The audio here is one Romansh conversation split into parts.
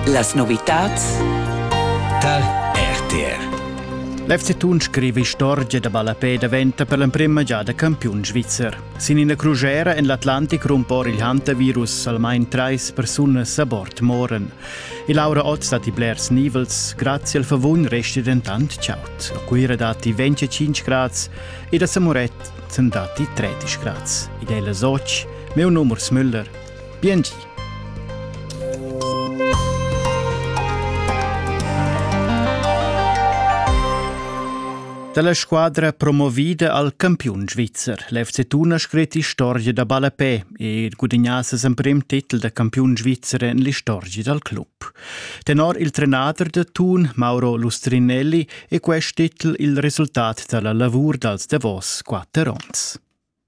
Las novitads tar RTR. L'FC Thun scriva istorgia da ballapè daventa per l'emprima giada campiun svizzer. Sin ina crugera en l'Atlantic rumpor il hantavirus almain trais persunas a bord moran. E Laura Otz dat i blers nivels, grazie al favun resti dentant chaut. A Cuira datti 25 grads ed a Samuret datti 13 grads. Id è las 8, meu numers Müller, Bientü! Dalla squadra promovida al campiun svizzer. L'FC Thun ha scrit historia da ballapè e gudagnà ses emprim titel da campiun svizzer en l'istorgia dal club. Tenor il trenader da Thun, Mauro Lustrinelli, è quest titel il resultat dalla lavur dals Davos quatter onns.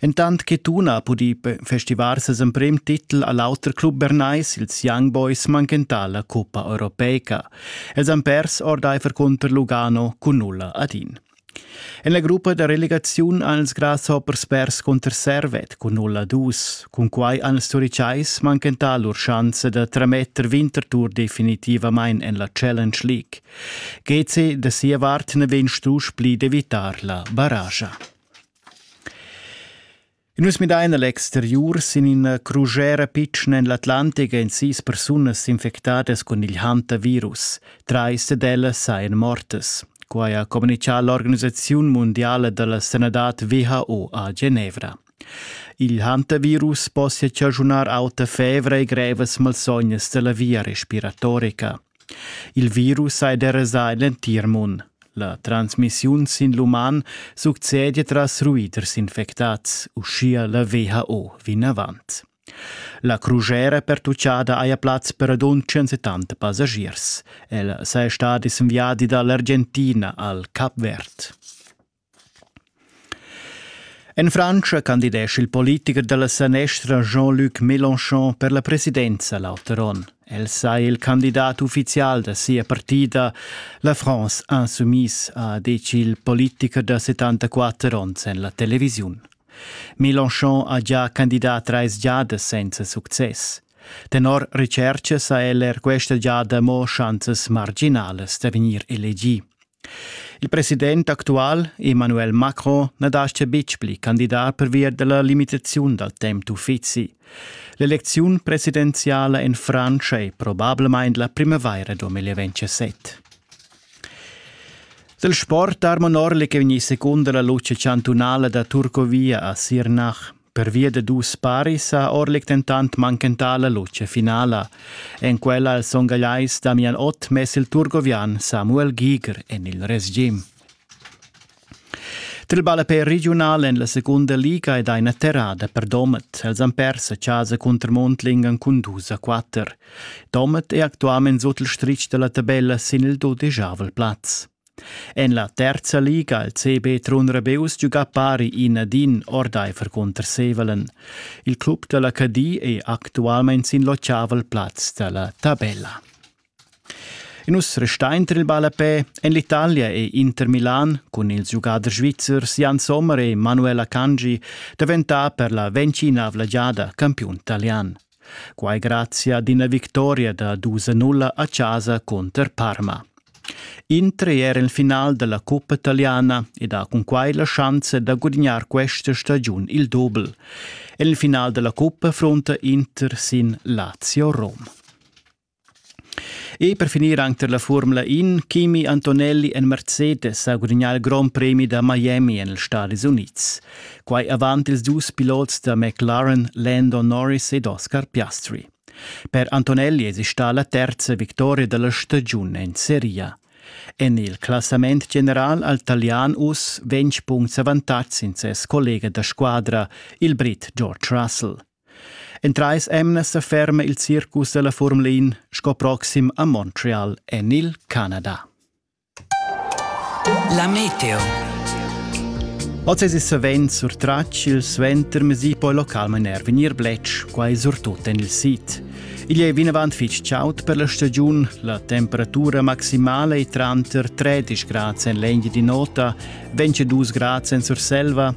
Entant che Tuna ha pudì festivar ses emprim titel a l'auter club bernais, ils Young Boys manchentà la cuppa europeica. Els han pers ordaifer cunter Lugano cun nulla ad in. En la gruppa da relegaziun han ils Grasshoppers pers cunter Servet cun nulla dus. Cunquai han ils Turicais manchentà lur schanza da trametter Winterthur definitivamain en la Challenge League. GC da sia vart na vegn strusch pli d'evitar la barragia. Nus midain l'exteriur sin ina crusera pitschna en l'Atlantic ein sis persunas infectadas cun il hantavirus. Trais dad ellas sajan mortas. Quai ha communitgà l'organisaziun mundiala dalla sanadad WHO a Genevra. Il hantavirus possia chaschunar auta fevra e grevas malsognas dalla via respiratorica. Il virus hai derasà en l'entir mund. La transmissiun sin l'uman succede tras ruiders infectads, uschia la WHO vinavant. La crugera pertuccada haja plaz per adon 170 passagiers. Ella saja stada in viadi dall'Argentina al Cap Verd. En Frantscha candidescha il politicher da la sanestra Jean-Luc Mélenchon per la presidenza l'auter onn. El saja il candidat uffizial da sia partida. La France Insoumise ha detg il politicher da 74 onns en la televisiun. Mélenchon ha già candidat trais giadas senza success. Tenor recerchas ha el er questa giada mo schanzas marginalas da vegnir elegì. Il president actual Emmanuel Macron na dastga betg pli candidar pervia da la limitaziun dal temp d'uffizi. L'elecziun presidenziala en Frantscha è probablamain la primavaira 2027. Dal sport Armo Norli che vegni secunda la luce chantunala da Turcovia a Sirnach. Pervia da dus paris ha Orlik dentant manchentà la lutscha finala. En quella ha il son gagliais Damian Ott mess il turgovian Samuel Giger en il resgim. Til ballapè regiunal en la segunda liga ed ina terrada per Domet. Els han pers a casa cunter Mondlingen cun dus a quatter. Domet è actualment sut il stritg da la tabella sin il dudeschavel plaz. En la terza liga il CB Trun Rebeus giuga pari in ad in ordaifer cunter Sevelen. Il club da la Cadi è actualmein sin l'ottavel plaz da la tabella. E nus restein tra il ballapè. En l'Italia è Inter Milan cun ils giugaders svizzers Jan Sommer e Manuela Cangi daventà per la ventina avlagiada campiun italian. Quai grazia ad ina victoria da dus a nulla a chasa cunter Parma. Inter è er il final da la cuppa italiana ed ha cunquai la schanza da gudignar questa stagiun il dobel. En il final da la cuppa fronta Inter sin Lazio Rom. E per finir anc tar la Formula In, Kimi Antonelli en Mercedes ha gudagnà il grond premi da Miami en els Stadis Unids. Quai avant ils dus pilots da McLaren Lando Norris ed Oscar Piastri. Per Antonelli esista la terza victoria da la stagiun en seria. En il classament general al talian uss ventg punts avantatg sin ses collega da squadra, il Brit George Russell. En trais emnas sa ferma il circus da la Formula 1 sco proxim a Montreal en il Canada. La meteo. Oz es savens surtratg il suentermes e poi localmain er vegnir bletsch, quai surtut en il sid. Igl è vinavant fitg chaud per la stagiun, la temperatura maximala è tranter 13 grads en l'Engia di Nota, 22 grads en Surselva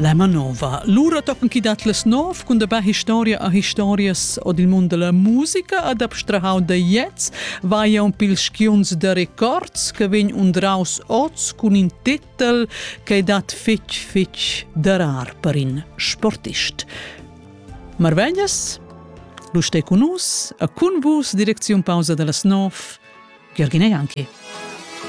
La manova. Lura toppen chi dat las nov cun dabà historia a historias od il mund della musica ad abstrahau da jets vaia un pil skiunz da records che vegn undraus oz cun in titel che dat fitch fitch darar per in sportist. Marveglias? Lu stai con nus a cun vus direcziun pausa dallas nov Georgina Janki.